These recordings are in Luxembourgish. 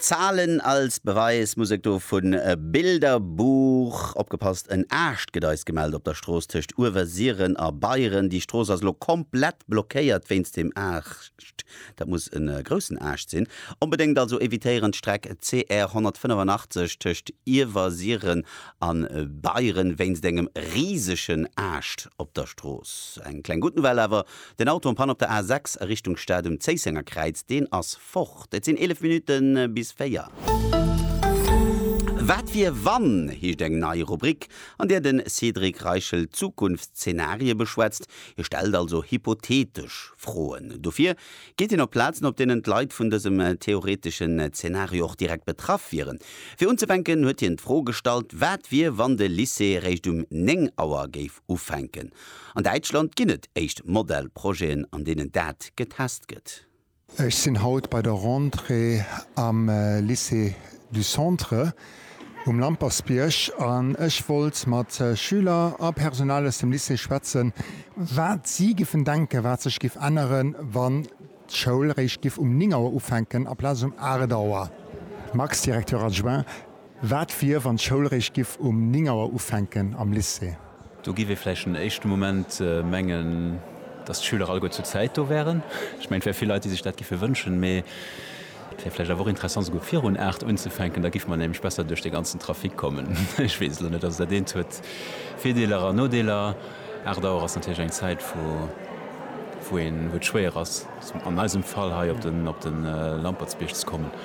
Zahlen als Beweis, Musek do vun Bilderbuch. Opgepasst, en Aascht gëtt eis gemellt op der Strooss tëscht Uewersiren a Beieren. Déi Strooss ass elo komplett blockéiert wéinst deem Aascht. Dat muss e groussen Aascht sinn. Onbedéngt also evitéieren d'Streck CR 185 tëscht Iewersiren a Beieren wéinst engem risegen Aascht op der Strooss. Eng kleng gutt Nouvelle awer, Den Auto am Panne op der A 6 a Richtung Stad um Zéisséngerkräiz, deen ass fort. Et sinn 11 Minutten bis 4. Wat wier wann? heescht eng nei Rubrik, an där de Cédric Reichel Zukunftszeenarie beschwätzt. Hie stellt also hypothetesch Froen. Dofir geet hien op Plazen, op deenen d'Leit vun dësem theoreteschen Zeenario och direkt betraff wieren. Fir unzefänken huet hien d'Fro gestallt, wat wier, wann de Lycée eréischt um 9 Auer géif ufänken? An Däitschland ginn et éischt Modellprojeten, an deenen dat getest gëtt. Ech sinn haut bei der Rentrée am Lycée du Centre um Lampersbierg an ech wollt mat Schüler a Personal aus dem Lycée schwätzen, wat si giffen denken, wat sech giff änneren, wann d'Schoul réischt giff um 9 Auer ufänken aplaz um 8 Auer. Max, Directeur adjoint, Wat wier, wann d'Schoul réischt giff um 9 Auer ufänken am Lycée? Do giff ee vläicht en éischte Moment mengen, dass d'Schüler alleguer zur Zäit do wären. Ech mengen, et wär vill Leit, déi sech dat giffe wënschen. Mee et wär vläicht awer och interessant, souguer virun 8 unzefänken. Da giffe mer nämlech besser duerch dee ganzen Trafic kommen. Ech weess elo net. Also dat eent huet Virdeeler an Nodeeler. 8 Auer ass natierlech eng Zäit, wou et schwéier ass, an eisem Fall hei op de Lampertsbierg ze kommen.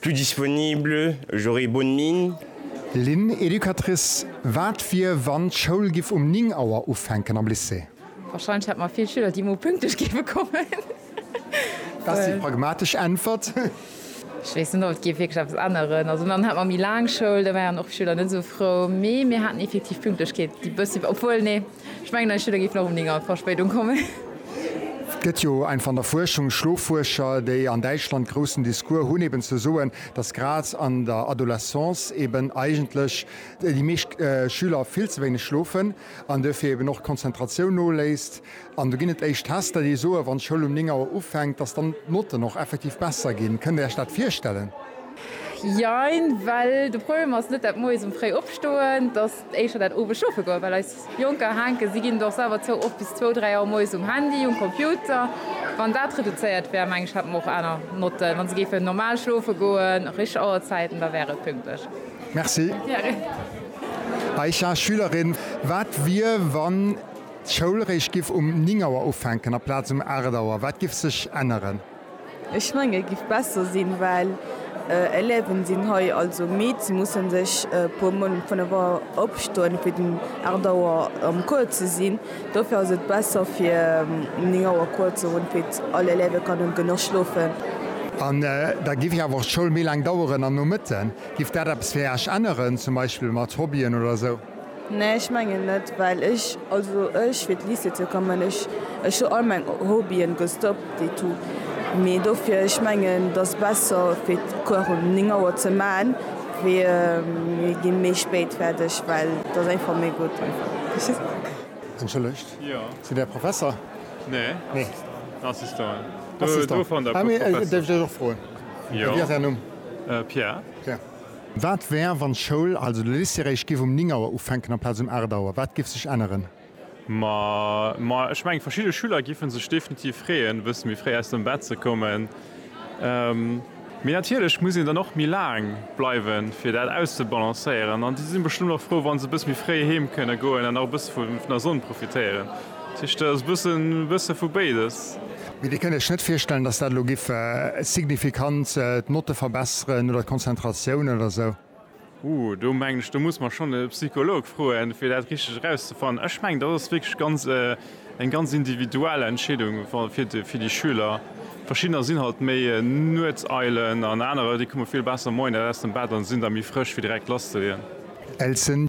Plus disponible, j'aurai bonne mine. Lynn, Educatrice, Wat wier wann d'Schoul giff um 9 Auer ufänken am Lycée? Wahrscheinlech hätt mer vill Schüler déi mol pünktlech géife kommen. Dat ass déi pragmatesch Äntwert. Ech weess net ob et géif wierklech eppes änneren. Also dann hätt mer méi laang Schoul, da wäiren och Schüler net esou frou. Mee mir haten effektiv Pünktlechkeet déi bëssi, obwuel nee. Ech mengen eis Schüler géifen och um 9 Auer Verspéidung kommen. Et gëtt jo einfach an der Fuerschung Schloffuerscher, déi an Däitschland groussen Discours hunn, eben ze soen, dass grad an der Adolescence eben eigentlech déi meescht Schüler vill ze wéineg schlofen an duerfir eben och d'Konzentratioun noléisst. An do ginn et éischt Tester, déi soen, wann d'Schoul um 9 Auer ufänkt, dass dann d'Notten och effektiv besser ginn. Kënnt Dir Iech dat virstellen? Jein, well de Problem ass net dat moies um fréi Opstoen. éischer dat owes schaffen goen, well eis Jonker hänken, si ginn et och selwer zou, oft bis zwou, dräi Auer moies um Handy, um Computer. Wann dat reduzéiert wär, meng ech, hätte mer och aner Notten. Wann se géifen normal schlofe goen, richteg Auerzäiten, da wär et pünktlech. Merci. Aisha, Schülerin, Wat wier, wann d'Schoul réischt giff um néng Auer ufänken aplaz um aacht Auer? Wat giff sech änneren? Ech mengen et giff besser sinn well Élèven sinn hei also midd, se mussen sech e puer mol um 5 Auer opstoen fir den 8 Auer am Cours ze sinn. Dofir ass et besser fir um 9 Auer Cours ze hunn fir all Élève kënnen genuch schlofen. An da giff awer och d'Schoul méi laang daueren an Nomëtten. Giff dat eppes fir Äerch änneren zum Beispill mat Hobbyen oder sou? Nee ech mengen net well ech also ech fir d'Lycée ze kommen ech ech hu all meng Hobbyen gestoppt et tout mee dofir ech mengen dass besser fir d'Cours um 9 Auer ze man wéi mir gi méi spéit fäerdeg well dass einfach méi gutt. Entschëllegt, sidd Där Professer? Nee, Assistant. Assistant, ah, mee däerf ech Iech och froen, wéi ass Är Numm? Pierre. Pierre. Wat wär, wann d'Schoul, also de Lycée eréischt giff um 9 Auer ufänken amplaz um 8 Auer? Wat giff sech änneren? Ma, ma ech mengen, verschidde Schüler giffe sech definitiv freeën, e bësse méi fréi aus dem Bett ze kommen. Mee natierlech muss een dann och méi laang bleiwen, fir dat auszebalancéieren. An déi si bestëmmt och frou, wa se e bësse méi fréi heem kënne goen an nach e bësse vun der Sonn profitéieren. Dat heescht, et ass e bësse vu béides. Mee Dir kënnt Iech net virstellen, datt dat elo giff signifikant d'Notte verbesseren oder d'Konzentratioun oder esou? Huh, do mengen ech, do muss mer schonn e Psycholog froen, fir dat richteg erauszefannen. Ech mengen, dat ass wierklech ganz, eng ganz individuell Entscheedung fir de, fir déi Schüler. Verschiddener sinn halt méi Nuetseilen an anerer, déi komme vill besser moies aus dem Bett a sinn da méi frësch, fir direkt lasszeleeën. Elsen,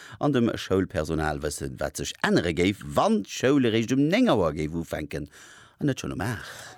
an dem Schoulpersonal wëssen, wat sech ännere géif, wann d'Schoul eréischt um 9 Auer géif ufänken an net schonn um 8.